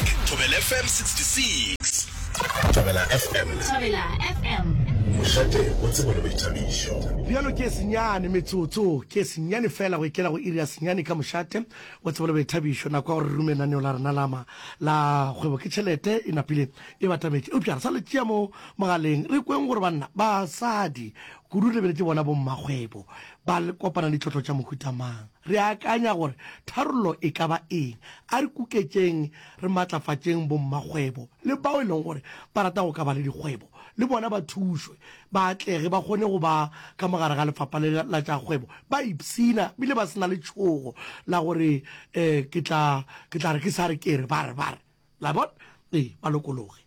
Thobela FM 66. Thobela FM. Thobela FM. Mošate o tsebo le boithabišo. Bjalo ke senyane metsotso ke senyane fela go ikela go iri ya senyane ka mošate o tsebo le boithabišo. Nako ya gore re rume lenaneo la rena la ma la kgwebo ke tšhelete e napile e batametše. Eupša re sa le tšea mo mogaleng re kweng gore banna, basadi, Kudu re be re bona bommakgwebo ba kopana le ditlotlo tša mohuta mang? Re akanya gore tharollo e ka ba eng? A re kuketšeng re matlafatšeng bommakgwebo le bao e leng gore ba rata go ka ba le dikgwebo le bona ba thušwe ba atlege ba kgone go ba ka mo gare ga lefapha le la tša kgwebo ba ipshina bile ba se na letšhogo la gore um ke tla ke tla re ke sa re ke re ba re ba re la bona ee ba lokologe.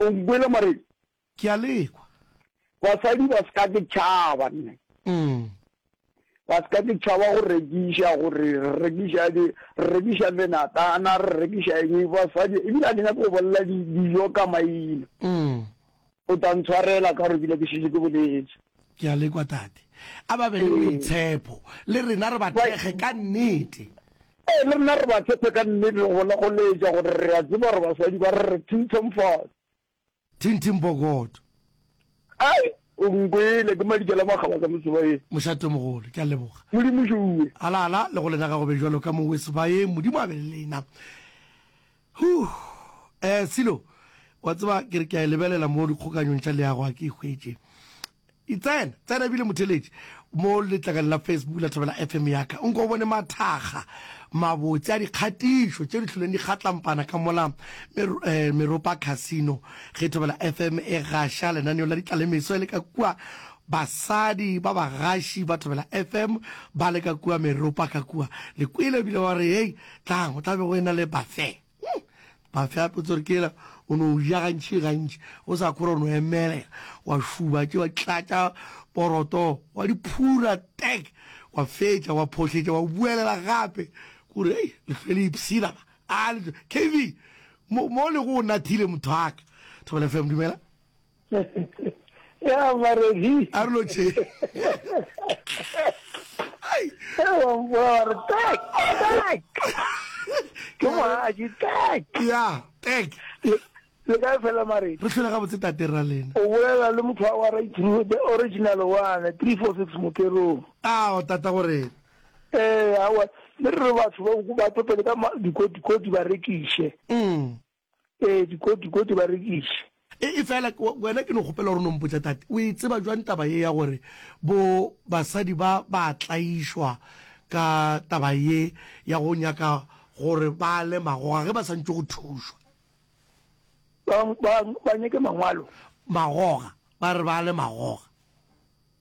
O mboele morena. Ke a le kwa. Basadi ba se ka ke tšhaba nne. Ba se ka ke tšhaba go rekiša gore re rekiša di re rekiša menatana re rekiša eng basadi ebile a ke nyaka go bolela dijo ka maina. O tla ntshwarela ka gore ke ne ke šetše ke boletse. Ke a le kwa tate. A ba be le boitshepo le rena re ba thekge ka nnete. Ee, le rena re ba tshepe ka nnete go bona go leetša gore re a tseba gore baswadi ba re re thinthomfotse. Thinthimpokoto. Ai, o nkwele, ke madikela a makgaba ka mosebaeng. Mošatomogolo, ke a leboga. Modimo Šue. Ala, ala, le go lena ga go be bjalo ka mo wesebaeng, Modimo a be le lena. Huh! Eh, Silo, wa tseba, ke re ke a e lebelela mo dikgokanyong tša leago, a ke e hwetše. I tsena, tsena ebile motheletši mo letlakeng la Facebook la Thobela FM ya ka, o nko o bone mathakga mabotse a dikgatišo tše di hloleng di kgatlampana ka mola eh, Meropa Casino ge Thobela FM e gaša lenaneo la ditlalemeso e le ka kua basadi ba bagaši ba Thobela FM ba le ka kua Meropa ka kua le kwele ebile wa re hei tlang o tla be go e na le bafe Hmm. Bafya potsore kela o no ja gantši gantši o sa kgora o no emelela wa šuba tše wa tlatša poroto wa di phura tek wa fetša wa phohletša wa buelela gape kore ei lefele ipsina a kv mo le go nathile motho aka thobela fm dumela ya mare di a re lo tše ai wa mpola re tak tak ke mo a di tak ya tak le ka fela mare re hlole ga botse tate ra lena o bolela le motho wa right through the original one 346 mokerong a o tata gore eh a wa le re batho ba go ba topele ka dikoti koti ba rekiše mm Ee, dikoti, koti ba rekiše. E, efela wena ke no kgopela gore o no mpotša, tate, o e tseba bjang taba ye ya gore bo basadi ba ba tlaišwa ka taba ye ya go nyaka gore ba le magoga ge ba santšwe go thušwa? Ba, ba, ba nyake mangwalo. Magoga, ba re ba le magoga.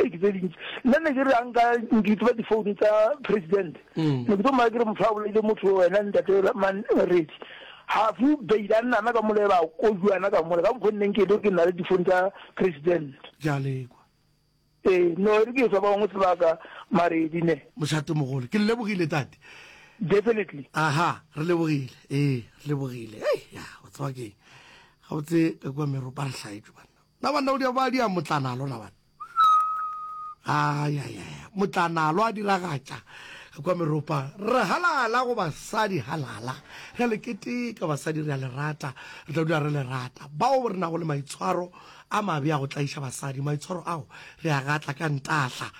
Ke tse dintši nna ne ke re a nka nkitsiba difounu tsa president ne ke tlo mmaya ke re motho a bolaile motho wena ntate man redi hafu beile a nnana ka mole ba kojuana ka mole ka mokgwa nneng ke be ke nna le difounu tsa president ja lekwa ee no e re ke fa bangwe sebaka maredi ne mošate mogolo ke lebogile tate definitely aha re lebogile ee re lebogile ei ya o tswa ke ga o tse ka kwa meropa re hlaetšwe banna Na banna o di ba dia motlanalo na bana? Ay ay ay motlanalo a diragatša kwa meropa re halala go basadi halala re le keteka basadi re a le rata re tla dula re le rata bao re nago le maitshwaro a mabe a go tlaiša basadi maitshwaro ao re a gatla ka ntahla